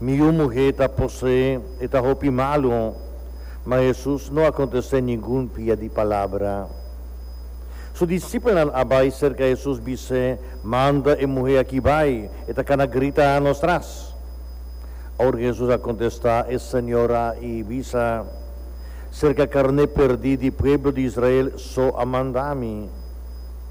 Mi yu muhé ta posé, e ta hopi malu. Ma Hesus no a kontest'é ningun pia di palabra. Su disipelnan a bai serka Hesus bis'é, Manda e muhé aki bai, e ta kana grita nos tras. Aor Hesus a kontestá e señora i bisa, Serka karné perdí di pueblo di Israel so a mandami.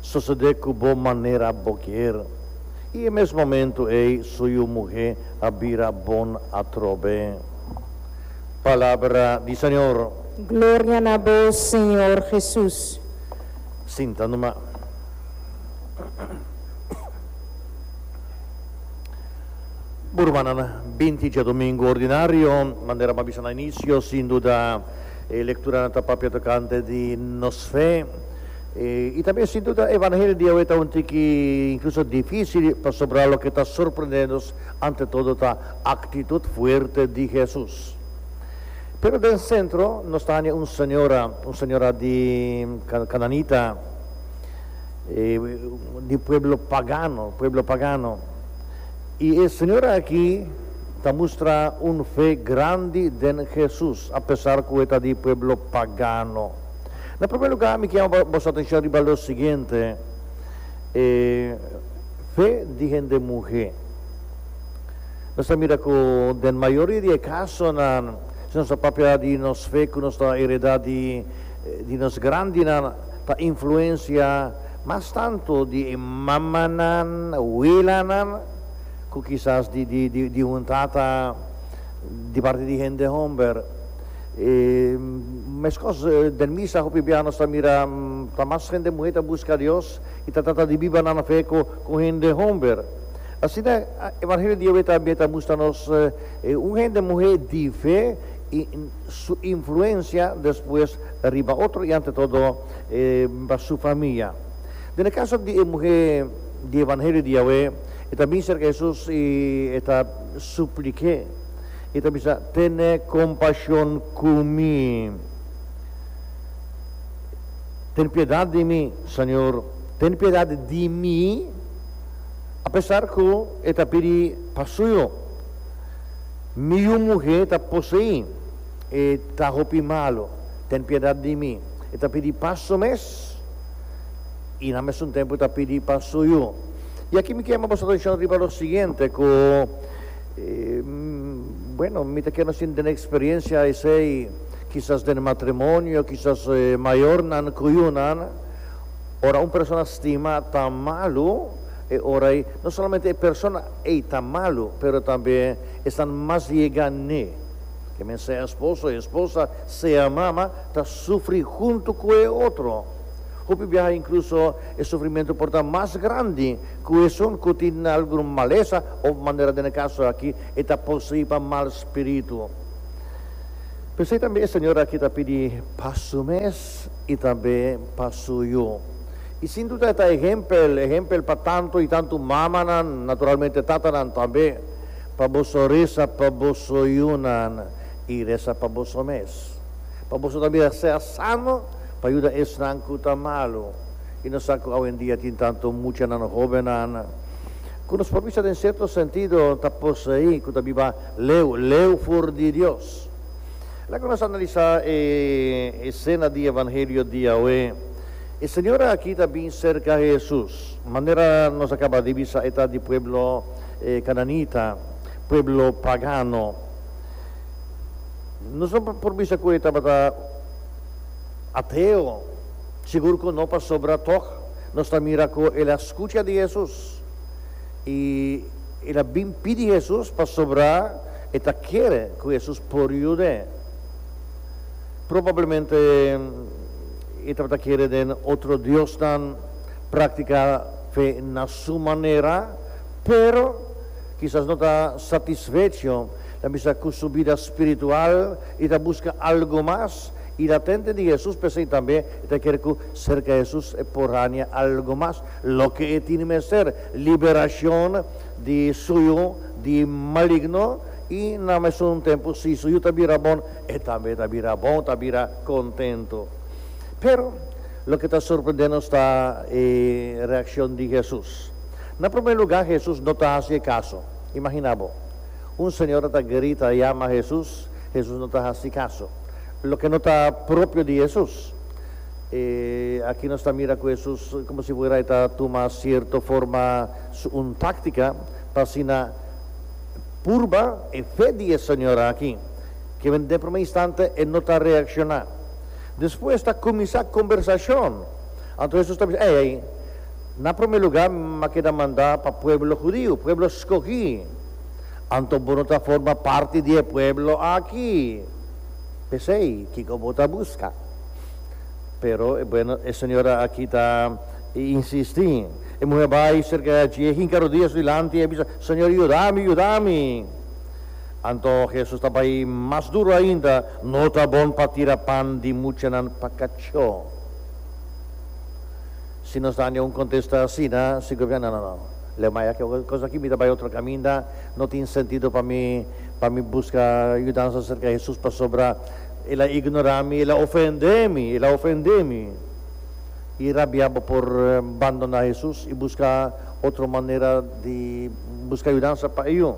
sosodé ku bo manera bo kier, i e mes momentu ei su yu muhé a bira bon atrobe. Palabra di Señor. Gloria na bo, Señor Jesus. Sinta numa. Bo rumannan, binti diadomingu ordinario, manera bo a bisa na inisio, sin duda e lekturanan ta papia tokante di nos fe. I tambe sin duda e evangelio di Yahweh ta un tin ki inkluso difisil, pasobra loke ta sorprende nos ante todo ta aktitut fuerte di Hesus. Pero den sentro nos ta haña un señora, un señora di kananita, di pueblo pagano, pueblo pagano. I e señora aki ta mustra un fe grandi den Hesus, apesar ku e ta di pueblo pagano. Na prome lugar mi ke yama boso atenshon riba lo siguiente, e fe di hende muhe. Nos ta mira ku den mayoria di e kasonan, si nos ta papia di nos fe ku nos ta hereda di di nos grandinan, ta influensia mas tantu di e mamanan, welanan, ku kisas di di di un tata di parti di hende homber. E meskos den misa hopi bia nos ta mira ta mas hende muhé ta buska Dios i ta trata di biba nan fe ku hende homber. Asina Evangelio di awe tambe ta mustra nos un hende muhé di fe i su influensia despues riba otro i ante todo riba su famia. Den e kaso di e muhé di Evangelio di awe, e ta bin serka Hesus i e ta suplik'é. I ta bisa, Tene kompashon ku mi. Ten piedat di mi, Señor. Ten piedat di mi. Apesar ku e ta pidi pa suyo, mi yu muhé ta poseí. E ta hopi malu. Ten piedat di mi. E ta pidi pa su mes i na mesun tempu ta pidi pa suyo. I aki mi kema boso atenshon riba lo siguiente, ku Bueno, mi ta kende sin tene experiencia esey, kisas den matrimonio, kisas mayornan ku yunan. Ora un persona stima ta malu, e ora ei no solamente e persona ei ta malu, pero tambe esnan mas yega n'e. Ke men sea esposo, esposa, sea mama, ta sufri huntu ku e otro. Hopi biaha inkluso e sufrimentu por ta mas grandi. Ku esun ku tin algun malesa òf manera den e kaso aki e ta poseí pa mal spiritu. P'esei tambe e señor aki ta pidi pa su mes i tambe pa su yu. I sin duda e ta ehèmpel, ehèmpel pa tantu i tantu mamanan, naturalmente tatanan tambe, pa boso resa pa boso yunan i resa pa boso mes, pa boso tambe ser sano pa yuda esnan ku ta malu. I nos sa ku awendia tin tantu mucha na nos hóbennan ku nos por bisa den sierto sentido ta poseí, ku ta biba leu leu for di Dios. Laga nos analisá e esena di evangelio di awe. E señora akí ta bin serka Hesus. Manera nos a kaba di bisa e ta di pueblo kananita, pueblo pagano. Nos no por bisa ku e tabata ateo. Sigur ku no pasobra tòg nos ta mira ku el a skucha di Hesus i el a bin pidi Hesus pasobra e ta kere ku Hesus por yud'é. Probablemente e tabata kere den otro diosnan praktika fe na su manera, pero kisas no ta satisfecho, ta bisa ku su bida spiritual i ta buska algu mas. I na tente di Hesus p'esei tambe e ta kere ku serka Hesus e por haña algu mas, loke e tin mester, liberashon di su yu di maligno, i na mesun tempu si su yu ta bira bon, e tambe ta bira bon, ta bira kontentu. Pero, loke ta sorprende nos ta e reakshon di Hesus. Na promé lugá Hesus no ta hasi e kaso. Imaginá bo, un señora ta grita yama Hesus, Hesus no ta hasi kaso. loke no ta propio di Hesus. E aki nos ta mira ku Hesus komo si fuera e ta tuma sierto forma su un táktika pa asina purba e fe di e señor aki, ke den e promé instante e no ta reakshoná. Despues ta kuminsá kombersashon. Anto Hesus ta bisa, Ei, ei, na promé lugá, m'akeda mandá pa pueblo hudiu, pueblo skogí. Anto bo no ta forma parti di e pueblo aki, p'esei kiko bo ta buska? Pero, bueno, e señora aki ta insistí. E muhé bai serka di dje, e hinka rodia su dilanti i a bisa, Señor, yuda mi, yuda mi! Anto Hesus ta bai mas duru ainda, No ta bon pa tira pan di muchanan pa kachó. Si nos daña un contesta asina, si gobierno no, no, no, le maya ke cos aki mi ta bay otro caminda, no tin sentido pa mi, pa mi busca yudansa cerca Hesus pasobra el a ignora mi, el a ofende mi, el a ofende mi. Y rabia bo por bandona Hesus y busca otro manera di busca yudansa pa eyu.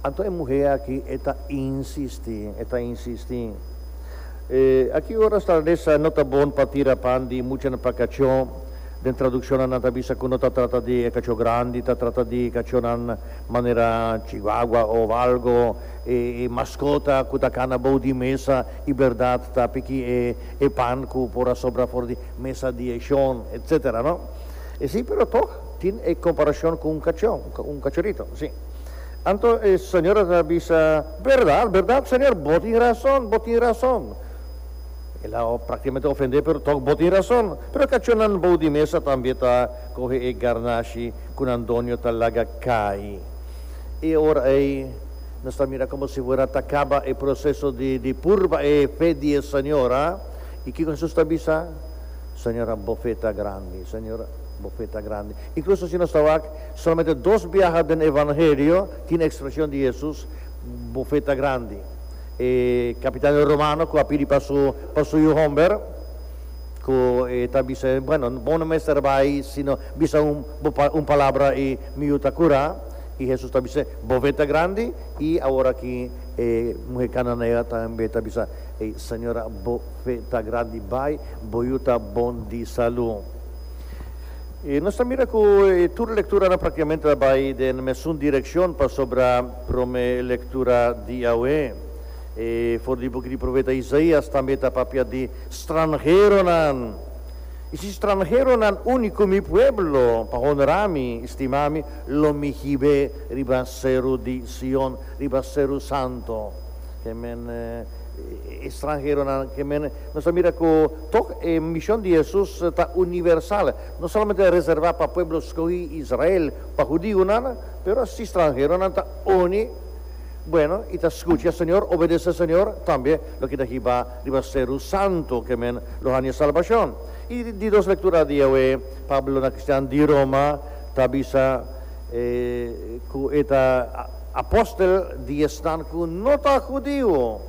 Anto e muhe aki e ta insisti, e ta insisti. E aki ora Stradessa no ta bon pa tira pan di muchanan pa kachó. Den tradukshonnan nan ta bisa ku no ta trata di e kachó grandi, ta trata di kachónan manera chihuahua òf algo, e maskota ku ta kana bou di mesa i bèrdat ta piki e pan ku por a sobra for di mesa di e shon, etsetera, no? E si, pero tòg tin e komparashon ku un kachó, un kachorito, si. Anto e señora ta bisa, Berdad, berdad, señor, bo tin rason, bo tin rason. El a prákticamente ofendé, pero tok bo tin rason. Pero kachonnan bou di mesa tambe ta kohe e garnashi ku nan doño ta laga kai. E ora ei nos ta mira komo si fuera ta kaba e proseso di di purba e fe di e señora. I kiko Hesus ta bisa? Señora, bo fe ta grandi, señor, bo fe ta grandi. Inkluso si nos ta wak. Solamente dos biaha den Evangelio tin e expresion di Jesus bofeta grandi. E capitan di Romano cu a pidi pa su pa su yu homber cu e ta bisa e, Bueno, bo no mester bay sino bisa un bo pa un palabra y mi yu ta cura. Y Jesus ta bisa, Bofeta grandi y awor aki e muher cananea tambe ta bisa, Ey, Señora, bo fe ta grandi, bay, bo yu ta bon di salud. I nos ta mira ku e tur lekturanan praktikamente ta bai den mesun direkshon pasobra promé lektura di awe for di buki di profeta Isaías tambe ta papia di stranheronan. I si stranheronan uni ku mi pueblo pa honrá mi i stimá mi, lo mi hib'é riba seru di Sion, riba seru santu. Ke men e stranheronan? Ke men Nos a mira ku tok e mishon di Hesus ta universal, no solamente reservá pa pueblo skohí Israel, pa hudionan, pero asi stranheronan ta uni bueno i ta skucha Señor, obedesé Señor, tambe loke ta hibá riba seru santu ke men lo haña salbashon. I di dos lektura di awe, Pablo na kristian di Roma ta bisa ku e ta apòstel di esnan ku no ta hudio.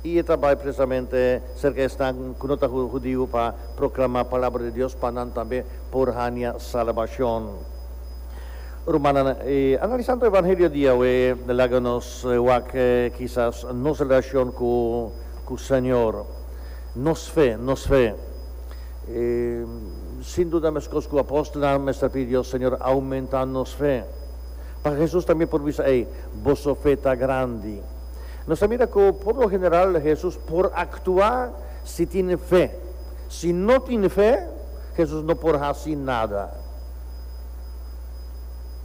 I e ta bai presamente serka esnan ku no ta hudiu pa proklamá palabra di Dios pa nan tambe por hania salbashon. Rumannan, analisando e evangelio di Yahweh laga nos wak kisas nos relashon ku Señor, nos fe, nos fe. Sin duda meskos ku apòstelnan mester pidi Dios, Señor, aumenta nos fe. Pasobra Jesus tambe por bisa, Ey, boso fe ta grandi. Nos a mira cu por lo general Jesús por actua si tin fe. Si no tin fe, Jesús no por haci nada.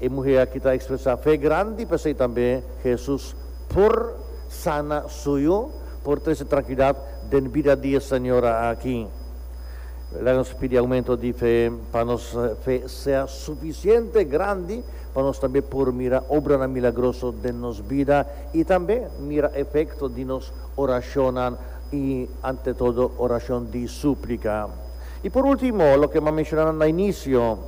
E muhe aki ta expresa fe grandi, p'esei tambe Jesús por sana suyo, por trece tranquilidad den bida di e señora aki. Laga nos pidi aumento di fe pa nos fe sea suficiente grandi pa nos tambe por mira obranan milagroso den nos bida i tambe mira efekto di nos orashonnan i ante todo orashon di súplika. I por último, loke m'a menshona nan na inisio,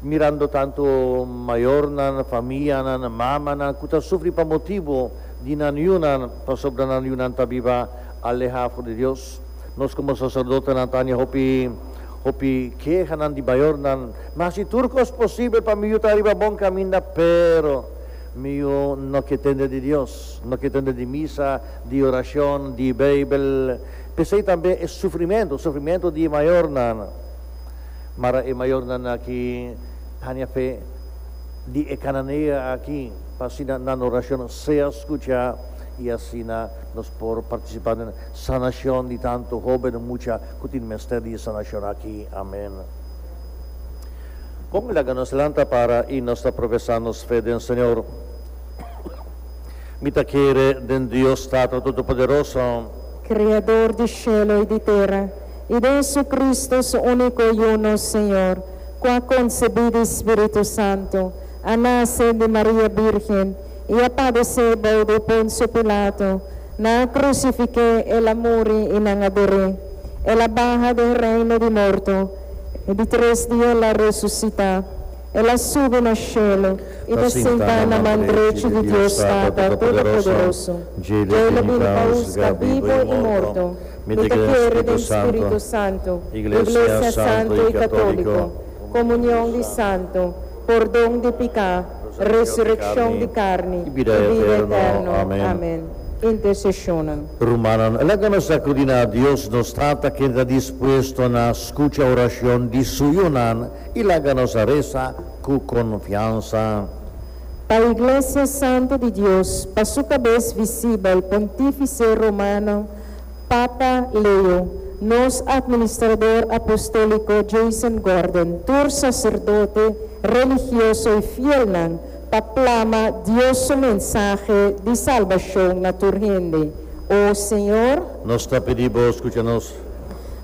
mirando tantu mayornan, famianan, mamanan ku ta sufri pa motibu di nan yunan pasobra nan yunan ta biba aleha for di Dios, nos komo saserdotenan ta haña hopi Hopi kehanan di bayornan, ma si tur kos posibel pa mi yu ta riba bon kaminda, pero mi yu no ke tende di Dios, no ke tende di misa, di orashon, di Beibel. P'esei tambe e sufrimentu, sufrimentu di e mayornan. Mara e mayornan aki haña fe di e kananea aki, pa asina nan orashon sea skucha i asina nos por partisipá den sanashon di tantu hóbennan, mucha. Cu tin mester di e sanacion aki? Amen. Con laga nos lanta para y nos ta profesa nos fe den Señor. Mi ta kere den Dios Tata Todopoderoso. Criador di cielo y di tera, y den Jesucristo, Su unico Yu, nos Señor, cu a concebi di Spiritu Santo, a nace di Maria Virgen, i a padesé bou de Poncio Pilato, nan a krusifiké el, a muri i nan a doré. El a baha den reino di morto, i di tres dia el a resusitá. El a subi na shelu i ta sentá na man drechi di Dios Tata Todopoderoso. Djei lo bini pa husga bibu i morto. Mi ta kere den Spiritu Santu, iglesia santu i katóliko, komunion di santu, pordon di piká, resurekshon di karni i bida eterno. Amen. Interseshonnan. Rumannan, laga nos ta kudi na Dios, nos Tata ken ta dispuesto na skucha orashon di Su yunan, i laga nos a resa ku konfiansa. Pa Iglesia Santu di Dios, pa Su Kabes visibel, Pontífise Romano, Papa Leo, nos Administrador Apostóliko Jason Gordon, tur saserdote, religioso i fielnan pa plama Dios su mensahe di salbashon na tur hende, o Señor. Nos ta pidi Bo skucha nos.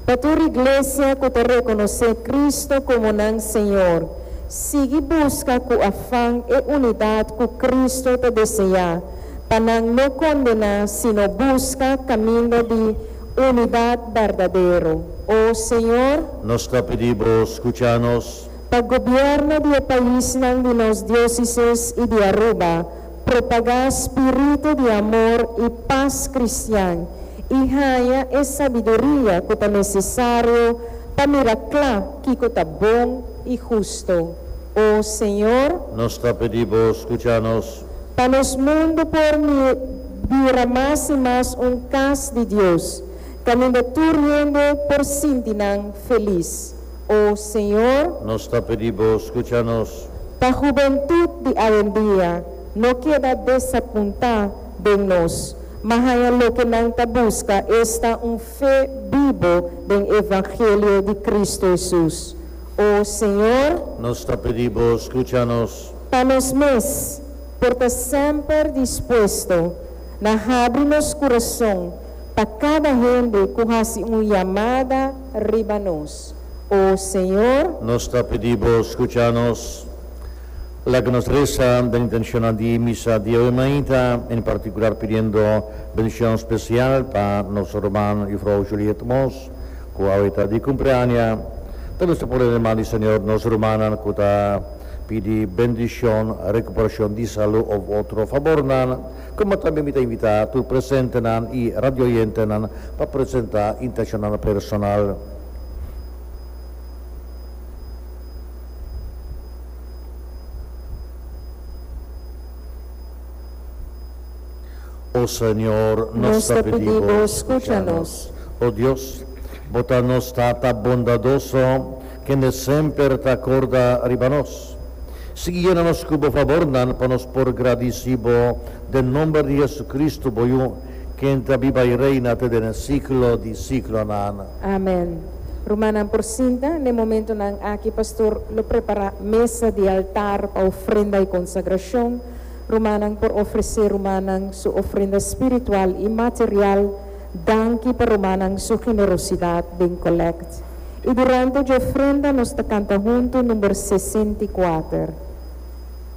Pa tur Iglesia ku ta rekonosé Kristu komo nan Señor, sigui buska ku afan e unidat ku Kristu ta deseá. pa nan no kondená sino buska kaminda di unidat berdadero. O Señor. Nos ta pidi Bo skucha nos. Pa gobièrnu di e paisnan di nos diósisis i di Aruba propagá spiritu di amor i pas kristian i haña e sabiduria ku ta nesesario pa mira kla kiko ta bon i hustu. O Señor. Nos ta pidi Bo skucha nos. pa nos mundu por bira mas i mas un kas di Dios, kaminda tur hende por sinti nan felis. O Señor. Nos ta pidi Bo skucha nos. Pa hubentut di awendia no keda desapuntá den nos, ma haña loke nan ta buska, esta un fe bibo den evangelio di Cristo Hesus. O Señor. Nos ta pidi Bo skucha nos. Pa nos mes, por ta semper dispuesto na habri nos kurason pa kada hende ku hasi un yamada riba nos. O Señor. Nos ta pidi Bo skucha nos. Laga nos resa den intenshonnan di misa di awe mainta, en partikular pidiendo bendishon spesial pa nos ruman Jufrou Juliet Moss, ku awe ta di kumpreaña. Ta mester por animá di Señor nos rumannan ku ta pidi bendishon, rekuperashon di salu òf otro fabornan, komo tambe mi ta invitá tur presentenan i radiooyentenan pa presentá intenshonan personal. O Señor, nos ta pidi Bo, skucha nos. O Dios, Bo ta nos Tata bondadoso. Kende semper ta korda riba nos. Sigui yena nos ku bo fabornan pa nos por gradisí bo den nomber di JesuCristu, bo Yu, ken ta biba i reina te den e siklo di siklonan. Amen. Rumannan por sinta. Na e momentunan aki pastor lo prepará mesa di altar pa ofrenda i konsagrashon. Rumannan por ofresé rumannan su ofrenda spiritual i material. Danki pa rumannan su generosidat den kòlèkt. I durante dje ofrenda nos ta kanta huntu number sesenta i kuater.